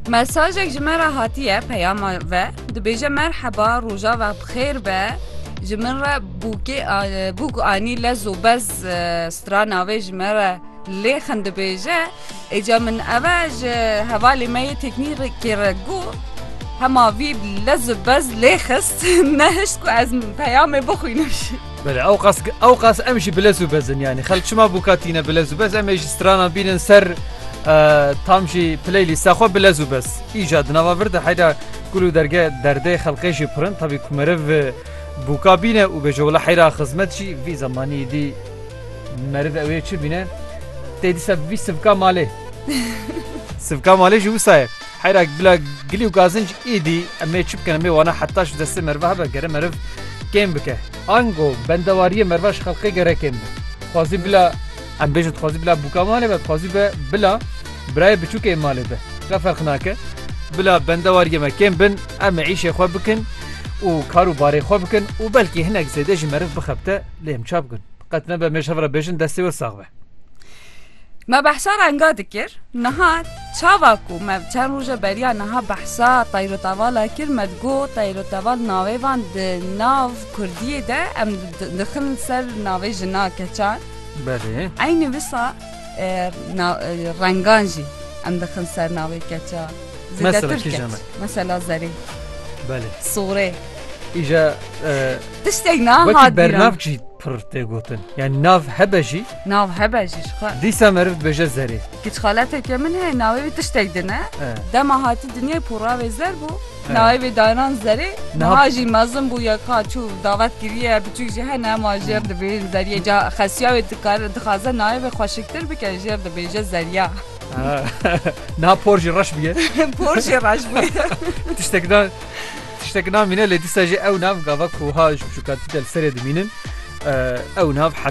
Mesajek ji me re hatiye peyama ve dibêje merheba roja ve bixêr be ji min re bûkê bûk anî lez û bez strana vê ji me re lê xin dibêje êca min eve ji hevalê me yê teknîkê re got hema vî lez û bez lê xist nehişt ku ez peyamê bixwînim. Belê ew qas ew qas em jî bilez û bezin yanî xelk çima bûka tîne bilez û bez em ê jî stranan bînin ser tam jî playlîsta xwe bilez û bez îca di nava vir de heyra gul û derge derdê xelqê jî pirin tabî ku meriv bûka bîne û bêje wila heyra xizmet jî vî zemanî dî meriv ew ê çi bîne tê dîsa vî sivka malê sivka malê jî wisa ye Heyra bila gilî û gazinc îdî em ê çi bikin? Em ê wana heta ji destê meriva hebe gere meriv kêm bike. Ango bendewariyê meriva ji xelkê gere kêm be. Dixwazî bila em bêjin dixwazî bila bûka malê be, dixwazî be bila birayê biçûkê malê be. Re ferq nake. Bila bendewariyê me kêm bin, em ê îşê xwe bikin û kar û barê xwe bikin û belkî hinek zêde jî meriv bixebite lê em ça bikin? Qet nebe em ê ji hev re bêjin destê we sax be. Me behsa renga dikir niha çava ku me çend roje beriya niha behsa tayrotevala kir me digo tayroteval navê van di nav Kurdiyê de em dixin ser navê jina keçan Eynî wisa rengan jî em dixin ser navê keça zêdetir keç mesela zerê Belê Sorê Îja Tiştek na Wekî hat bernav bîran. jî pir tê gotin. Yani nav hebe jî Nav hebe jî ji xwe. dîsa meriv dibêje zerê. Giçxaleteke min heye navê wî tiştek din e. E. Dema hatî dinyayê poravê zer bû. Evet. Navê wê danan zerê. Niha- Niha jî mezin bû ya ka çû davet kiriye biçûk jî hene ma jêr dibêjin zeriyê. Ca xesiya wê dikare dixwaze navê wê xweşiktir bike jêr dibêje zeriya. Ha. Niha por jî reş bûye. Por jê reş bûye. Tiştek na Tiştek namîne lê dîsa jî ew nav gava ku wiha ji biçûkatî de li serê dimînin ew nav heta